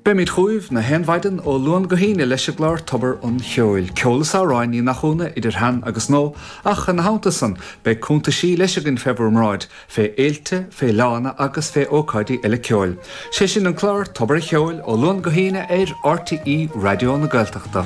Beimid chugaibh na haon mhaidin ó Luan go hAoine leis an gclár Tobar an Cheoil, ceol is amhráin ní nach ionadh idir shean agus nua, ach ina theannta san beidh cuntaisí leis againn fé bhur mbráid, fé fhéilte, fé fhleánna agus fé ócáidí eile ceoil. 'Sé sin an clár Tobar an Cheoil ó Luan go hAoine ar RTÉ Raidió na Gaeltachta.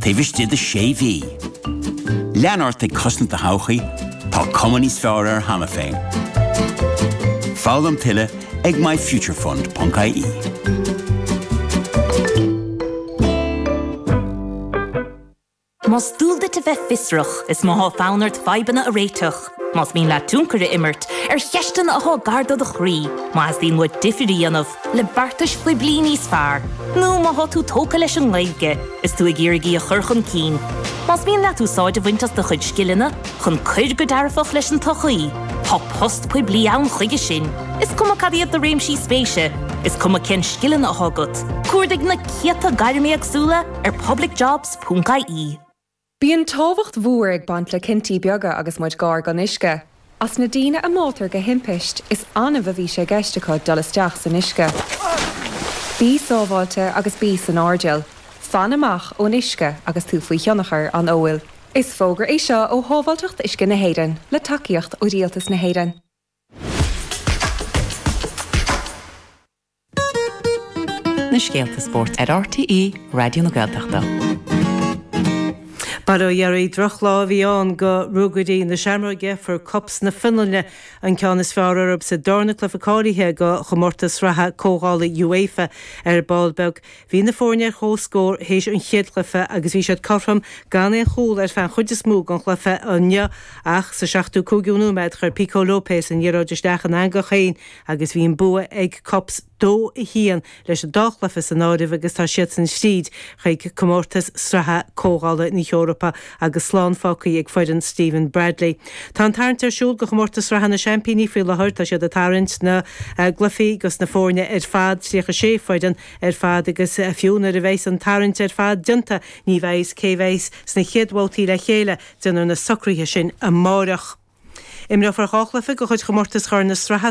taobh istigh de sé mhí. Lean ort ag cosaint do thodhchaí, tá cuma níos fearr air cheana féin. Foghlaim tuilleadh ag myfuturefund.ie. Más dual duit a bheith fiosrach, is má tá fonn ort fadhbanna a réiteach, Más mian leat tionchar a imirt ar cheisteanna atá gar do do chroí, má theastaíonn uait difear a dhéanamh le beartais phoiblí níos fearr, nó má tá tú tógtha leis an nGaeilge is tú ag iarraidh í a chur chun cinn, más mian leat úsáid a bhaint as do chuid scileanna chun cuir go dearfach leis an tsochaí, tá post poiblí ann chuige sin, is cuma cad iad do réimsí spéise, is cuma cén scileanna atá agat. Cuardaigh na céadta gairm éagsúla ar publicjobs.ie. Bíonn tábhacht mhór ag baint le cinntí beaga agus muid gar don uisce. As na daoine a mbáitear de thimpiste, is annamh a bhí sé i gceist acu dul isteach san uisce. Bí sábháilte agus bí san airdeall. Fan amach ón uisce agus tú faoi thionchar an óil. Is fógra é seo ó Shábháilteacht Uisce na hÉireann, le tacaíocht ó Rialtas na hÉireann. Na scéalta spóirt ar RTÉ Raidió na Gaeltachta. B'ar a dheireadh drochlá a bhí ann go Ruagairí na Seamróige, fuair KuPS na Fionlainne, an ceann is fearr orthu sa darna cluife cáilithe go chomórtas sraithe comhdhála UEFA ar ball beag. Bhí na foirne ar comhscór théis an chéad chluife agus bhí siad cothrom gan aon chúl ar feadh an chuid is mó den chluife inniu ach sa 75ú nóiméad chuir Pico Lopes an liathróid isteach ina eangach féin Agus bhí an bua ag KuPS, 2-1 leis an dá chluiche san áireamh, agus tá siadsan thríd chuig comórtas sraithe Comhdhála na hEorpa agus slán fágtha ag foireann Stephen Bradley. Tá an tarraingt ar siúl go Comórtas Sraithe na Seaimpíní faoi láthair. Tá siad ag tarraingt na gcluichí gus na foirne ar fad, 36 foireann ar fad, agus fiú nuair a bheas an tarraingt ar fad déanta ní bheidh fhios cé bheas sna chéad bhabhtaí le chéile. Déanfar na socruithe sin amárach. Imreofar dhá chluiche de chuid chomórtas Chorn na Sraithe,